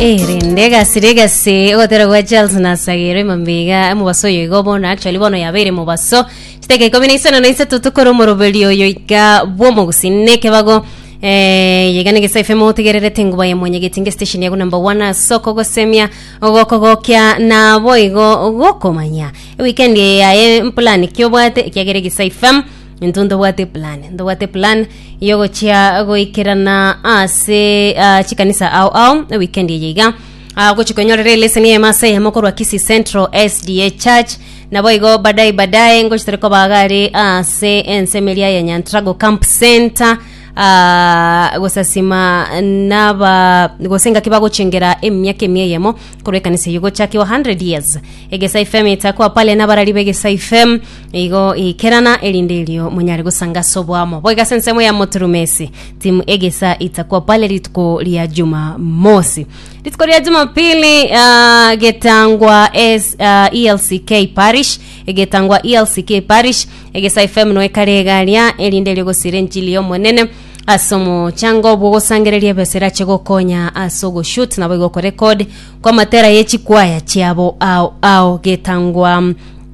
erende egasire egase ogotera gwa charles nasagere emambiga emobaso oyo igo bono actually bono yabeire mobaso chiteka ikomi na isano na isato tokore omoroberi oyo ika bw'omogusini na ekebago Eh, yegane gesa fm otegererete nguba ya mwenyegeti nge station yago number one asoko gosemia ogokogokia nabo igo gokomanya weekend yaye mpulani kiobwate ekiagere gesa fm Intwe ntobwate eplan ntobwate eplan yogochia goikerana ase ah, chikanisa ao ao weekend eye iga Ah, gochi konyorera eleseni eyemo ase eyemo korwa kisi central sda church nabo igo badai badai ngochi tore kobaga are ase ensemo eria ya nyantrago camp center Ah, gosasima naba gose ngaki bagochengera emiaka emia eyemo korwa ekanisa eye gochakiwa 100 years egesai fm etakwa pale nabarari begesai fm Igo ikerana erinde erio monyare gosanga ase oboamo boiga ase ensemo ya moturumesi timu egesa itakwa pale rituko ria juma mosi rituko ria jumapili uh, getangwa es, uh, elck parish egetangwa elck parish egesa fm no ekare egaria erinde erio gosira enchili yomonene ase omochango obwo gosangereria ebesa erache gokonya ase ogoshut nabo igo okorekod kwa matera ye chikwaya chiabo ao ao getangwa mm,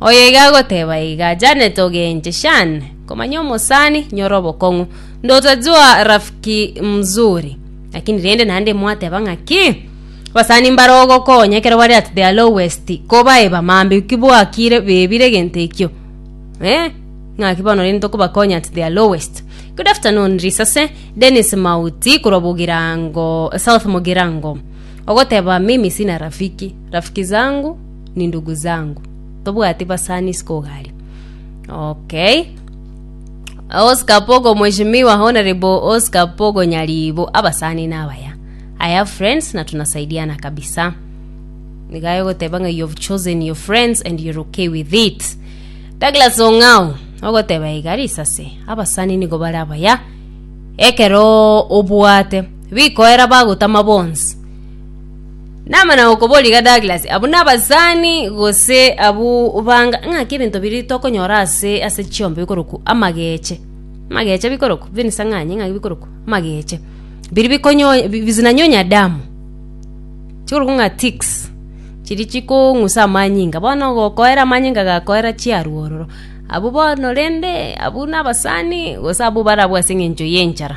Oyeiga agoteba iga, Janet ogenche shane komanya omosani nyore obokong'u. Ndotajua rafiki mzuri. Lakini rende naende mwateba ng'a ki? Abasani mbare ogokonya ekero bare at their lowest kobae bamambe ki bwakire bebire egento ekio. Eh? Ng'aki bono rende tokobakonya at their lowest. Good afternoon risase Dennis Mauti korwa Bogirango South Mogirango. Ogoteba mimi sina rafiki. Rafiki zangu nindugu zangu tobwati basani sikogari okay Oscar Pogo Mheshimiwa Honorable Oscar Pogo Nyaribo abasani nabaya I have friends na tunasaidiana kabisa nigayo goteba nga you have chosen your friends and you're okay with it Douglas Ong'ao ogoteba iga risase abasani nigo bare abaya ekero obwate bikoera bagotama bonsi Namana gokoboria iga Douglas, abwo nabasani gose abwo banga ng'aki ebinto biri tokonyora ase ase chiombe bikoroku amageche. Amageche bikoroku, Venus ang'anye ng'aki bikoroku amageche. Biri bikonyo bi- bizinanyonya damu. Chikoroku ng'a ticks, chiri chikong'usa amanyinga bono ogokoera amanyinga gakoera chiarwo ororo. Abwo bono rende abwo nabasani gose abwo barabwo ase eng'encho y'enchara.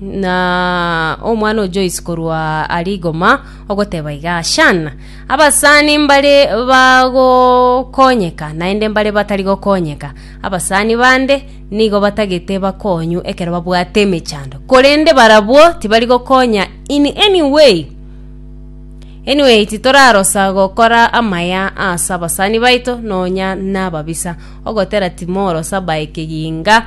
na omwana o Joyce korwa ari igoma ogoteba iga, Shan, abasani mbare bagokonyeka naende mbare batari gokonyeka. Abasani bande nigo batagete bakonyu ekero babwate emechando, korende barabwo tibari gokonya in any way. Anyway, titorarosa gokora amaya ase abasani baito nonya nababisa, ogotera timorosa bae kegiinga,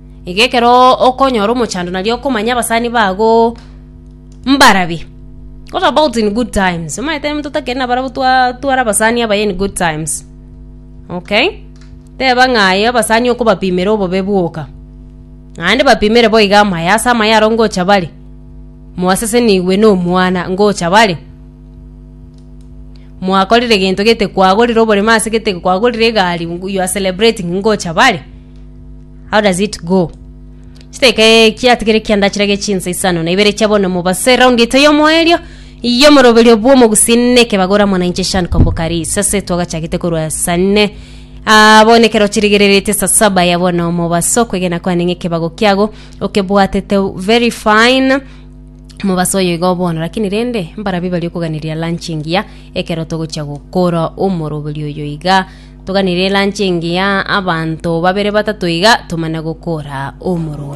Iga ekero okonyora omochando nario okomanya abasani bago mbarabi. What about in good times? Omanyete ere monto otakeri nabarabwo twa tware abasani abaye in good times. Okay? Teba ng'a aye abasani okobapimera obobe bwoka. Naende bapimere bo iga amaye ase amaye aro ngocha bare. Mwasesenigwe na omwana ngocha bare. Mwakorire gento gete kwagorire oborimo ase gete kwagorire egari you are celebrating ngocha bare. How does it go? Chidakika eh, kiatigere ekiandachera gie chinsa isano na ibere chia bono mobase raundi eto y'omoerio y'omoroberio bw'omogusii na ekebagora muna inche Shan Kombokari sase twagachagete korwa sane Ah, bono ekero chirigereretie saa saba ya bono mobaso kwegena kwane ng'a ekebago kiago okebwatete very fine mobasa oyo igo bono lakini rende mbarabi bari okoganiria lunch engiya ekero togochia gokora omoroberi oyo iga Toganire eranchi engiya, abanto babere batato iga, tomana gokora omorua.